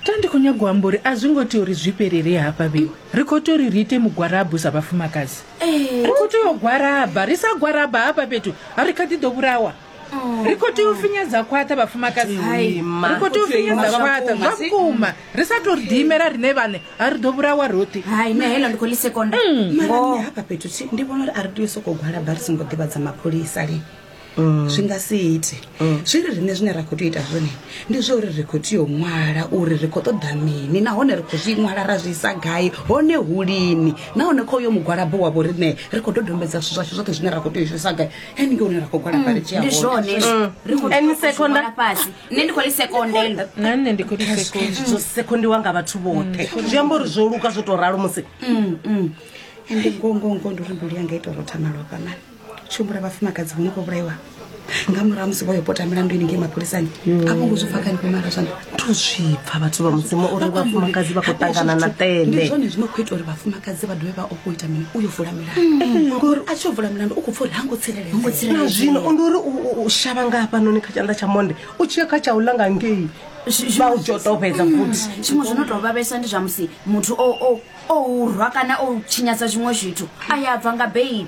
ta ndi khou nyago amba uri a zwi ngo tea uri zwi fhelele hafha vhewe ri khou tea uri ri ite mugwarabu sa vhafumakadzi ri khou tea u gwaraba ri sa gwaraba hafha fhethu a ri kha ḓi ḓo vhulawa ri khou tea u finyedza khwaṱha vhafumakadzi ri khou tea u finyedza khwaṱha zwa vhukuma ri sa tou ri ḓiimela riṋe vhane a ri ḓo vhulawa roṱhe hai na heḽo ndi khou lisekonda mara nṋe hafha fhethu thi ndi vhona uri a ri tea u sokou gwalaba ri songo ḓivhadza mapholisa lini mm. zwi nga si ite mm. zwi ri riṋe zwine ra khou tea ita zwone ndi zwa uri ri khou tea u ṅwala uri ri khou ṱoḓa mini nahone ri khou zwi ṅwala ra zwi isa gai hone hu lini nahone kha uyo mugwalabo wa vho riṋe ri khou dodombedza zwithu zwashu zwoṱhe zwine ra khou tea u shumisa gai ene ke une ra khou gwalaba mm. ri tshi ndi zwone ene sekonda fhasi nṋe ndi khou ri sekondela na nṋe ndi khou ri sekonda zwo sekondiwa nga vhathu vhoṱhe zwi amba uri zwo luka zwo tou ralo musi ende ngongongo ndi uri mbilu yanga ita uri o thamalofha mani tshumbula vhafumakadzi vho no khou vhulaiwa nga murahu musi vho yo pota milandu ini ngei mapholisani mm. a vho ngo zwi pfa kani kumara zwani to zwi pfa vhathu vha mudzimu uri vhafumakadzi vha khou ṱangana na tele ndi zwone zwi no khou ita uri vhafumakadzi vha dovhe vha o khou ita mini u yo vula milandu mm. eh, ngori a tshi yo vula milandu u khou pfa uri ha ngo tsireledzea na zwino ndi uri u shavha nga hafhanoni kha tshanḓa tsha monde u tshi ya kha tsha u langa ngei vha u tshi tou fhedza mm. futhi tshiṅwe zwi no tou vhavhesa ndi zwa musi muthu o o o urwa kana o tshinyadza zwiṅwe zwithu a ya bva nga beili